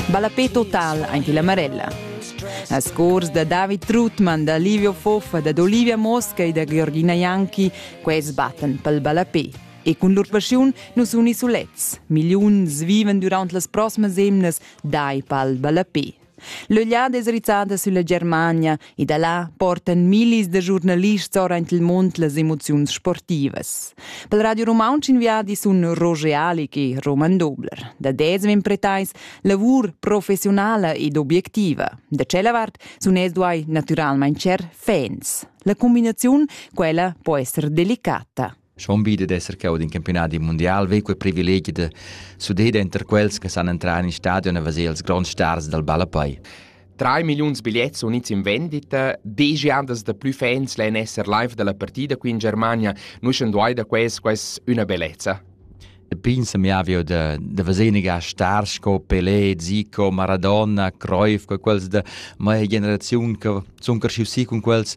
Ballapé total aint illa Marella. A scors da David Trutman, da Livio Foffa, da Olivia Mosca e da Georgina Janki, quels battan pel ballapé. E cun lur paschiun nus unisulets. Milliuns vivan durant las proximas emnas dai pal ballapé. L'Ögliada es rizzada sülla Germania e da là portan millis da giurnalists ora aint il mund las emoziuns sportivas. Pel Radio Rumauntsch in viadi sun Roger Alig e Roman Dobler. Da desem impretais lavur professionala ed obiectiva. Da tschella vart sun es duai natüralmaing cher fans. La combinaziun, quella, po esser delicata. Schon wieder d'esser cheu d'in campionadi mundial vei quei privilegi da sudeda enter quels che san entrar in stadion e veser els gronds stars dal ballapei. 3 milliuns bigliets sun ins in vendita, deigi andas da plü fans lein esser live dalla partida qui in Germania, nu schan duai da quels quais üna bellezza. Pensa mi avio da, da veseniga star sco Pelé, Zico, Maradona, Cruyff, quels da mia generaziun che sun cresciuti con quels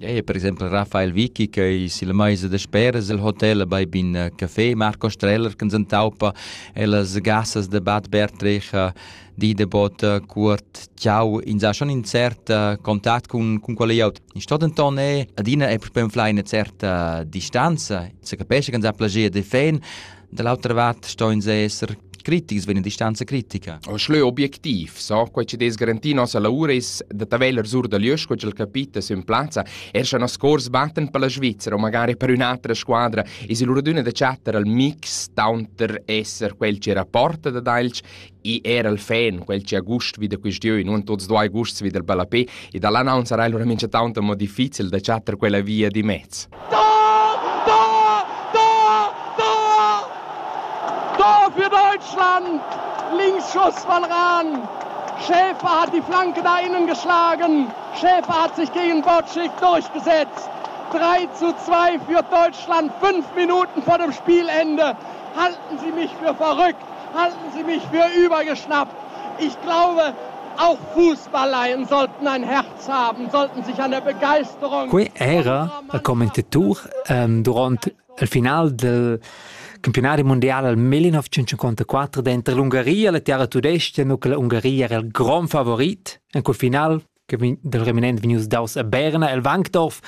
Ei è per exempel Raphael Vicky che silla meisa dasperas el hotel bei bin äh, café Marco Streller che s'entaupa e las gassas de Bad Bertrecha di de bot äh, cuort ciao in sa schon in cert äh, contact cun cun quella iot in sto denton è adina è per fly eine certe distanza se capesce che sa plagia de fan Da l'autra vart ston ins esser critics vegn a distanza critica. Schleu objektiv, so quei che des garanti nossa lavura is da taveler sur da lius quei ch'el capita sün plazza, er sche nos cors batten per la Svizzera o magari per un'altra squadra, is il raduna da chattar al mix taunter esser quel che rapporta da Dalch I era il fan, quel che ha gust vi da questiun, un tuts duai gusts vi del ballapé, e dall'annunzia era allora mincha tanto mo difficil da chattar quella via di mezz. Da! Da! Da! Da! Da für Deutschland! Linksschuss von ran! Schäfer hat die Flanke da innen geschlagen. Schäfer hat sich gegen Botschik durchgesetzt. 3 zu 2 für Deutschland. Fünf Minuten vor dem Spielende. Halten Sie mich für verrückt. Halten Sie mich für übergeschnappt. Ich glaube, auch Fußballleien sollten ein Herz haben, sollten sich an der Begeisterung. Quei era a commentatur ähm, durant il final del campionari mondiale al 1954 dentro l'Ungaria, la terra tudesca, nu che l'Ungaria era il gran favorit in quel final del reminent vegnius daus a Berna el Wankdorf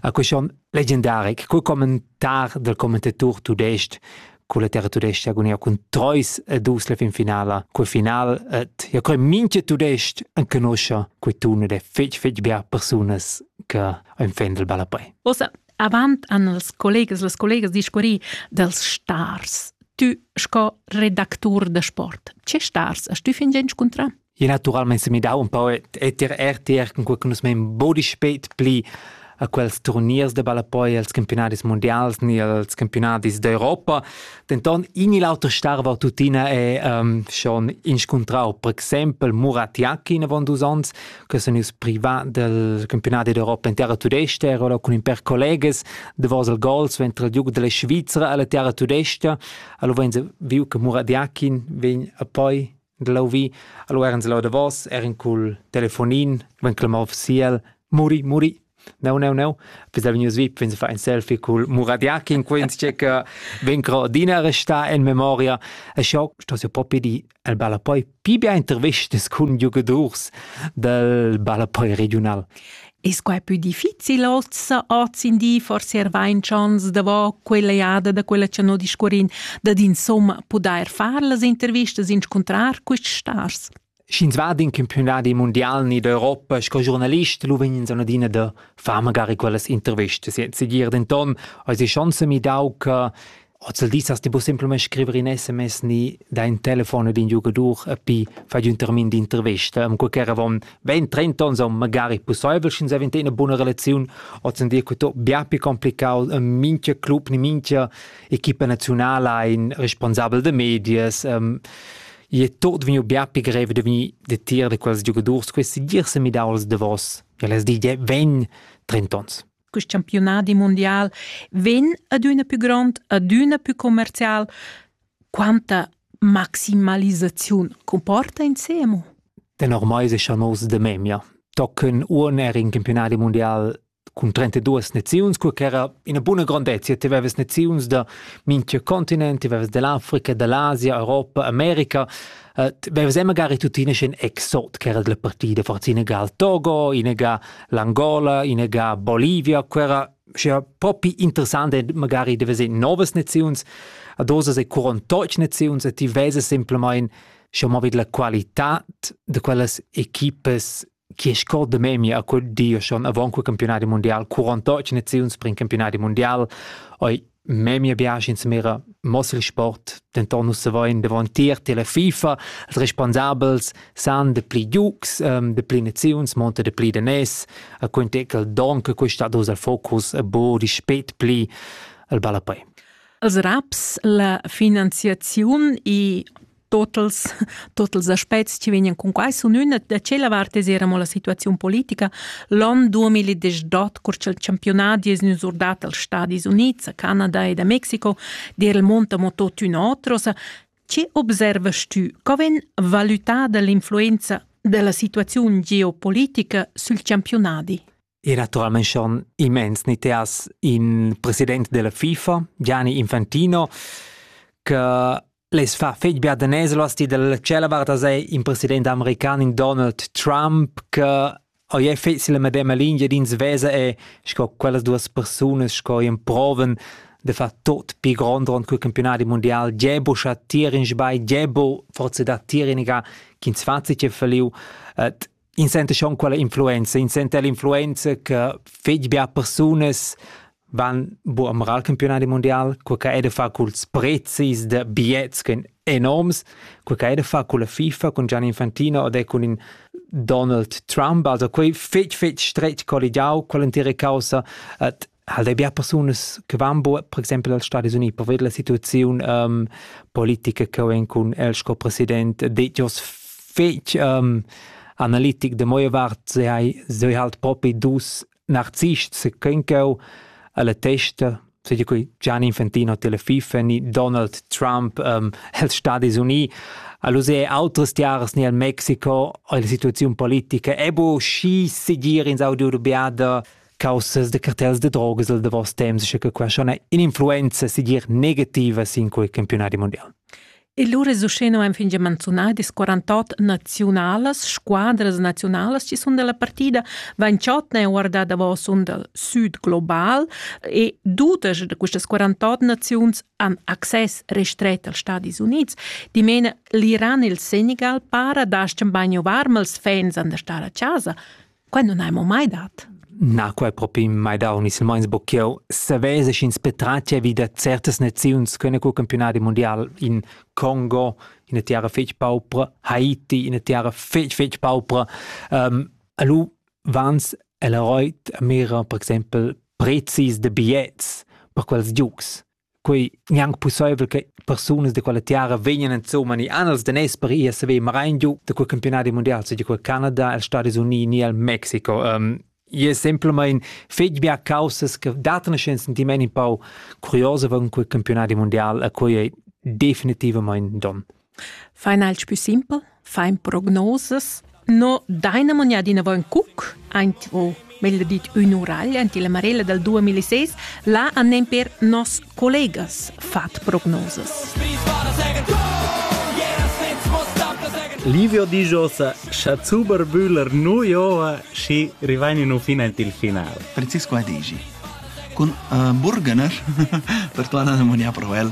a question legendaric cul commentar del commentator tudestg con la terra tudesca agonia cun Treus e dus la fin finala col final et ja coi minche tudestg an conoscia quei tun ed è fetg fetg bia persunas che ein fan del ballapei. Osa, avant an els collegas las collegas discurri dels stars. Tu sco redactur de sport, ce stars hast du fin gen scontra? e naturalmein se midau un pau et et ir RTR con quei nus mein bodi spet pli a quels turniers de ballapoi als campionadis mondials ni als campionadis d'Europa. Denton in il auter starva tuttina è um, schon inscuntrau per exempel Muratiaki in avon dus ons, che sono ils privat del campionati d'Europa in terra tudesta, ero con in per collegas de Vosel Gols ventre il duca della Svizzera alla terra tudesta, allo ven viu che Muratiaki ven a poi Glavi, allora ens lo davos, er in cul telefonin, ven clamà officiel, muri, muri. No, no, no. Visa vegnius vip, vegns a far ein selfie cul Muradiak in quens che che ven cro adina resta en memoria. E schau sto se propi di el balla poi pi bien intervistas cun giugadors del balla poi regional. Es quai pü difficil ossa hoz in di forse er vain chans davo quella jada da quella cha no discurrin dad insomma pudair far las intervistas inscuntrar quists stars? Sch'ins va in campionadi mondial ni d'Europa sco giornalist, lu vegn ins adina da far magari quellas intervistas. Segir denton, eis ei chance mi dau che Ozzeldis has ti bu semplamein scriver in sms ni da in telefon ed in giugadur e pi fai un termin d'intervesta. Am quecaravon vegn 30 ons aunc magari pusseivel sch'ins havent ina buna relaziun, ozzendi che to bia pli complicau. Mincha club ni mincha equipa naziunala ein responsabel da medias. ei è tot vegniu bia pli grev da vegnir detier da quels giugadurs. Questi dir se midaus davos. El es di, vegn 30 ons. Quest campiunadi mundial vegn adüna pü grond, adüna pü commercial. Quanta maximalisaziun comporta insemo? Tenor mai secha nos de memia. Tocken un era in campionadi mundial cun 32 naziuns, cur ch'era ina buna grandezia. Ti aveves naziuns da minchia continent, ti aveves dell'Africa, dell'Asia, Europa, America. Uh, ti aveves magari tuttina in exot, che era della partida, forza inega al Togo, inega l'Angola, in ega Bolivia, quera sia propi interessant e magari deve se novas naziuns, a dosa se curontoch naziuns e ti vese semplamain schon mal vid la qualità de quellas equipes chi è scor de memia a quel dio schon avant quel campionati mondial 48 naziuns per in campionati mondial oi memia biasch insumera mossel sport denton nus savein davon tier tela FIFA els responsabels san de pli giugs um, de pli naziuns monta de pli de nes a quintecal donc questa dos al focus a bo di spet pli al ballapei als raps la finanziaziun e totals totals aspects che vegnan cun quai sun üna da tschella vart es era mo la situaziun politica l'on 2018 cur cha'l campiunadi es gnü surdat als Stadis Units, a Canada ed a Mexico d'eir il monta mo totüna otrosa. Che observast tü? Co vegn valutada l'influenza della situaziun geopolitica sül campiunadi? E naturalmein schon immens ni te has in president della FIFA, Gianni Infantino, che les fa fetg bia da neslas ti dalla cella varta sei in president american Donald Trump che oi è fetz la medema linea din svesa e sco quellas duas persunas sco in proven de fa tot pi grond rond cul campionati mondial Gebo scha tier in sbai Gebo forse da tier iniga kin 20 che verliu et In senta schon quella influenza, in senta l'influenza che fetg bia persunas van bu am campionadi mondial, quei che hai da far culs prezis da bigliets che enorms, quei che hai da far culla FIFA, cun Gianni Infantino ed è cun in Donald Trump, also quei fetg fetg stretg colligiau, quell'entira caussa, et halt ei bia persunas che van buca per exempel als Stadis Uniti per vedere la situaziun um, politica che vegn cun el sco president detg os fetg um, analitic de moie vart se hai se halt propi dus narzists se kenko alla testa se di qui Gianni Infantino Telefifa ni Donald Trump um, els Stadis Uniti All'use autres jares ni al Mexiko la situazione politica è bo schi segir in Saudi Arabia caussas de cartels de drogas del davos temps, sche che qua schon in influenza sigir negativa sin quei campionati mondial. E lu resuscheno ein finge manzunadi 48 nazionalas, squadras nazionalas ci sun della partida, Vanciotna è guarda davos un del sud global e dudesch de quistas 48 naziuns han access restret als Stadis Units. Dimene l'Iran e il Senegal para da scembagno varmals fans an der star a casa. Quai nun hai mo mai dat. Na, quai propi mai dau, ni silmeins bo ch'jeu savess sch'ins petratgia vi da certas naziuns ch'ein cul campiunadi mundial in Congo, ina tiara fetg paupra, Haiti, ina tiara fetg fetg paupra. Um, alu vans el ha roit a mira, per exempel, prezis de bigliets per quels giugs. quei gnanc pusseivel che persunas de quella tiara vegnan insomma ni anels de nes per ir a saver marein giu de quel campionati mundial se di quel Canada els Stati Uniti ni al Mexico um, je semplamein fetg bia causas che datene ein sentiment in pau curiosa von quel campionati mundial a quei ei definitivamente don Fain alch pü simpel, fain prognosas. No daina manià d'inavant ün cuc aint o meglio dit ün uragl aint illa marella dal 2006. Là han nemper nos collegas fat prognosas. Livio dixosa cha Zuber Bühler nu joa schi rivain in un fin aint il final. Francisco Adigi. Con uh, Burgener, per tuana nemonià pro el.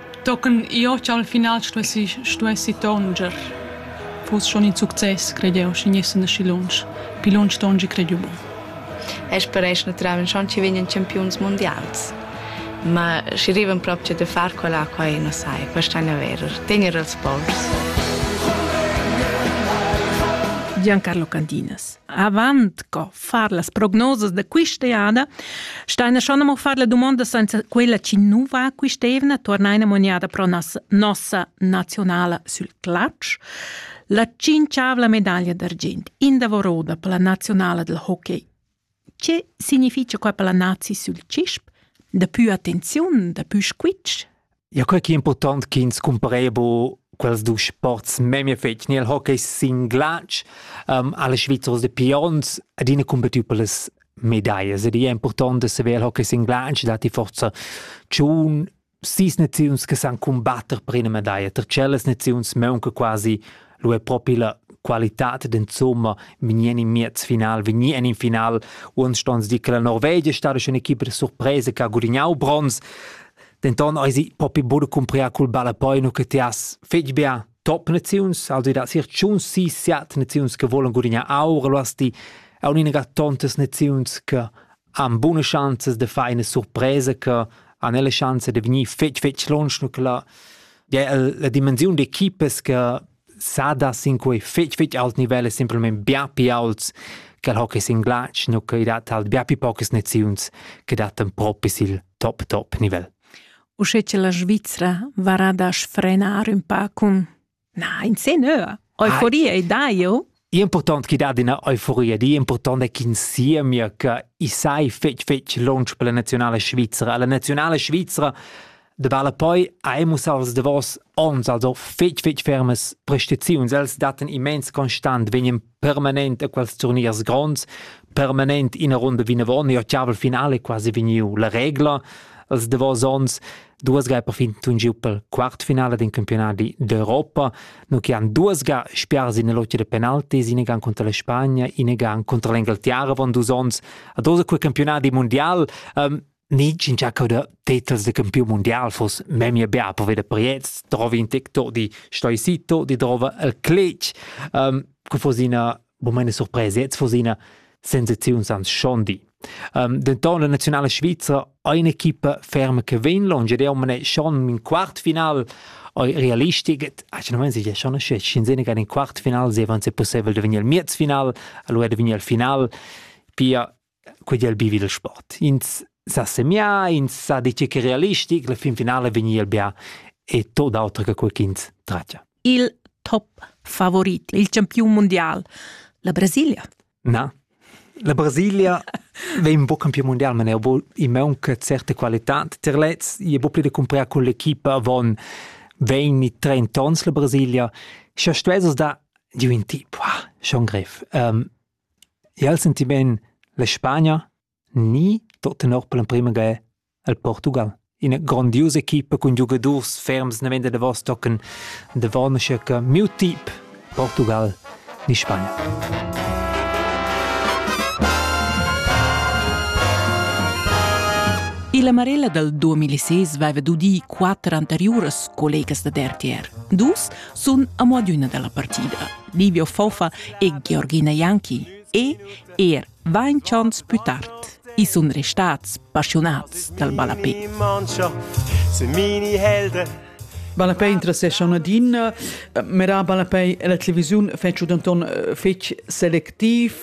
Tochen jeu ch'al final stuessi stuessi tonscher. Fuss schon in success, credeu, schi gnessan aschi lunsch. Pli lunsch tongi credeu buc. E speresch naturalmein schon ci vegnan campiuns mundials. Ma schi rivan proprio da far quella quai, non sai, quest'anno è vero, tenere els sports. Giancarlo Candinas. Avant co far las prognosas da quist'eada, staina schon amo far la domanda senza quella chi nu va quist'eivna, tornaina maniada pro nossa nazionala sül clutch. La cinciavla medaglia d'argint in davoro da la nazionala del hockey. Che significha qua per la nazi sül cisp? Da più attenziun, da più squitsch? Ja, quei che è important ch'ins cumparea bu quels dus sports memia fetg. Nel hockey sin glatsch um, alle Svizzers de Pions adina combattiu per las medallas. Ed è important de saver il hockey sin glatsch dat die forza tschun sis naziuns che san combatter per una medaglia. Ter cellas naziuns maunca quasi lu è proprio la qualità d'insomma vegni in miez final, vegni in final. Uns stons di che la Norvegia è stata schon un'equipa de sorpresa che ha gudagnau bronz. Denton eisi propi buca cumpriar cul ballapoi che ti has fetg bia top naziuns, also da sir tschun si siat naziuns che volen gudignar aur, lu hast ti aun ina tontas naziuns che han buna chanzas de far ina surpresa che han la chance de vegnir fetg fetg lunsch, nu che la, ja, la dimensiun d'equipas che sada sin quei fetg fetg alt nivel e simpelmente bia pi aults che hockey sin glatsch nu che dat halt bia pi poches naziuns che dattan propi sil top top nivel. Usche che la Svizzera varada sfrenar un pa cun na in se nöa. Euforia e dai, jo? Impurtant chi dat üna euforia, di impurtant è ch'ins siemia che i sai fetg fetg lunsch per la nazionala svizra. La nazionala svizra vala poi ha mussà als davos ons also fetg fetg fermas prestaziuns. Els dattan immens constant, vegnan permanent a quels turniers gronds, permanent ina runda vinavon, ir tschabel finale quasi vegniu la regla. Els davos ons Duas ga è perfin tungiu per quartfinala d'in campiunadi d'Europa, no che han duas ga spiars in lotta de penaltis, in gan contra la Spagna, in gan contra l'Engaltiera avant dus onns, a dosa quel campionadi mondial. Um, ni cin giacau de titels de campiun mondial fos memia bia per veder Priez, trovi in tec to di stoisito, di trova el clec. Um, que fos ina Bo meine surpresa jetzt von seiner Sensaziun sans Schondi. Um, denton la nazionale svizra ha un'equipa ferma che vegn longe ed omne schon in quartfinal realistic actualmente si schon sin sene che in quartfinal se avanza possibile de venir al miezfinal allora de venir al final pia quei di ha el bivi il sport. Ins sa semià, ins sa dir che realistic, la fin finala vegni el bia e tot auter che quei ch'ins tratga. Il top favorit, il campiun mondial, la Brasilia. Na, la Brasilia vei un po' campion mondial, ma ne i manca certe qualità. Ter lez, i è bo pli da comprare con l'equipa von 20-30 ans la Brasilia. Scha stuesas da giù in tip, wow, schon grev. Um, Jeu senti bein la Spagna ni tot tenor per l'emprema ga il Portugal. Ina grondiusa equipa cun giugadurs ferms naven da Davos tocan davon aschia che miu tip Portugal ni Spagna. La Marella dal 2006 aveva d'udir quatter anteriuras collegas da RTR. Dus sun amo adüna da la partida. Livio Fofa e Georgina Janki e er vainchants pü tard. I sun restats passiunats dal ballapè. Ballapè interessescha adina, mera ballapè e la televisiun fetsch danton fetg selectiv,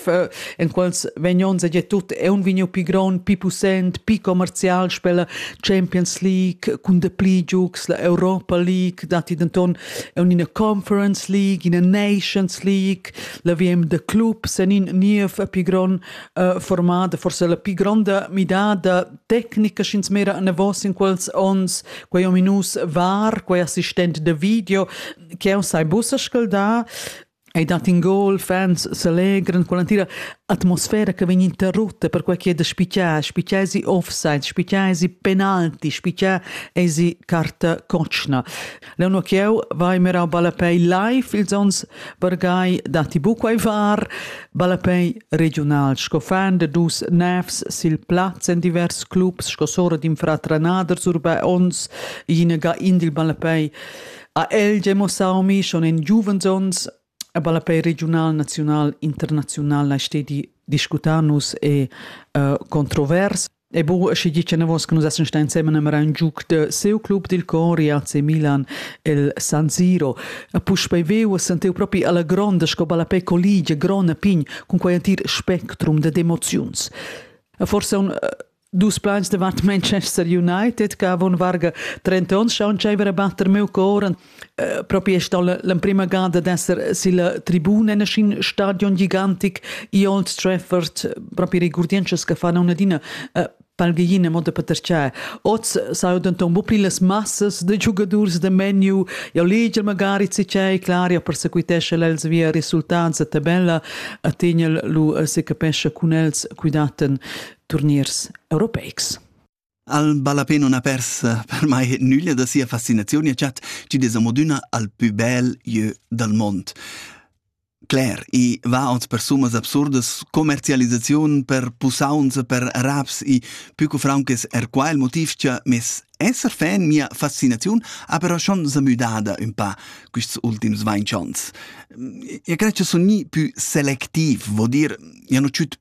en quals vegnons e tut è un vigniu pi gron, pi pussent, pi commercial spella Champions League cun de pli giugs la Europa League dati denton un ina Conference League, ina Nations League, la VM de clubs en in niev pi gron uh, formada, forse la pi gronda midada tecnica schins mera an vos in quels ons, quei ominus var, quei assistent de video, che sai bussa scalda, Ei dat in gol, fans selegran con l'entira atmosfera che vegn interrutta per quei che da spicar, spicar si offside, spicar si penalti, spicar si carta cotschna. Leonor Chieu vai mirau ballapei live ils ons vargai dati buquei var, ballapei regional, sco fan de dus nefs sil plaz en divers clubs, sco sora d'in fratranaders urba ons, ina ga indil ballapei Ha el gia mussau mi schon in giuvens onns a ballapei regional, naziunal, internaziunal lai stedi discutar nus e uh, controvers. E bu, sche gi che navos che nus essen sta insieme nemera un giuc de seu club dil Con Rialze Milan el San Siro. A puspei veu a senteu propi alla gronda sco ballapei colligia grona pign cun quei antir spectrum de emoziuns. A forse un uh, Dus plans davant Manchester United che avon varga 30 onns schaun tscheiver a batter meu coren. Uh, propi è stau l'emprima gada d'esser silla tribuna in schin stadion gigantic i Old Trafford, propi regurdientschas che fanno un'adina uh, palgheina moda per terciar. Oz sau denton bu pli las massas de giugadurs de menu, jau leger magari cicei, clar, jau persequitesce els via resultats a tabella, a tegnel lu se capesce cun els cuidaten turniers europeics. Al ballapè non ha pers per mai nüglia da sia fascinaziun e chat ci des amodüna al pü bel jeu dal mond. Claire, i va ons per summas absurdas, commercialisaziun per pusaunza per raps i pü co fraunches er qua il motiv cha mes esser fan mia fascinaziun ha però schon zamüdada ün pa quists ultims vainchons. Io cred cha sun gnii pü selectiv, vo dir, ja no tschüt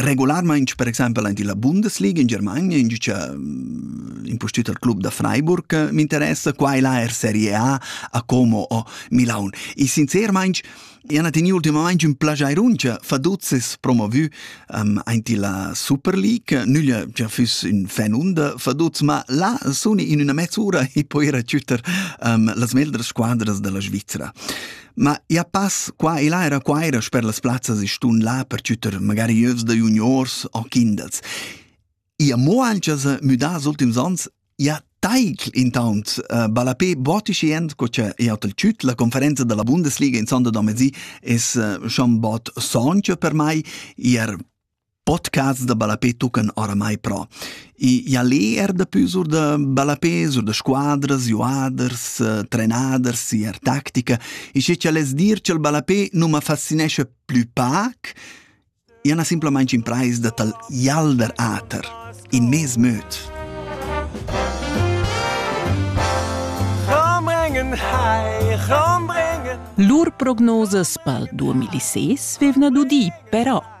Regularmaing per exaimpel aint illa Bundesliga in Germania ingiücha mm, impustüt al club da Freiburg eh, m'interessa, qua e là er Serie A a Como o Milaun. E sincermaing Iana teniu ultimamaing ün plagiairuncha faduzzes promovü um, aint illa Super League. Nüglia cha füss ün fan unda faduz, ma là suni in üna mezz'ura e poira chütter um, las meglder squadras da la Svizra. Ma ia pass qua e là era quaira sper las plazzas e stun là per tschütter magari ieus da juniors o kindels. Ia mo ancha s'ha müdà als ultims ans, ia taicl intaunt uh, ballapé botischi end co cha jau t'al tschüt. La conferenza dalla Bundesliga in sonda da mezì es uh, schon bod soncha per mai. Ier Podcasts da ballapé tuccan oramai però. I ia lê er dapü sur da ballapé, sur da squadras, juaders, eh, trenaders, ier tactica. E sche cha less dir cha'l ballapé nu ma fascinescha plü pac, ia n'ha simplamaing imprais da tal jalder ater, in mez möd. Lur prognosas pel 2006 vevna dudi, però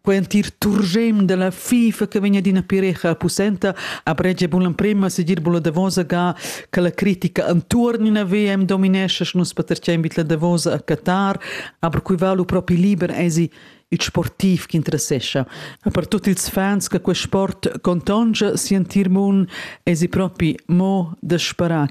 quentir turgem della FIFA che vegna d'ina pirecha pussenta a bregia bun l'emprema segir bun la Davosa ga che la critica antuorn in VM dominesce nus patercem bit la Davosa a Qatar aber cui va lu propi liber esi il sportiv che interessescha a per tutti ils fans che quel sport contongia sentir mun esi propi mo da sparare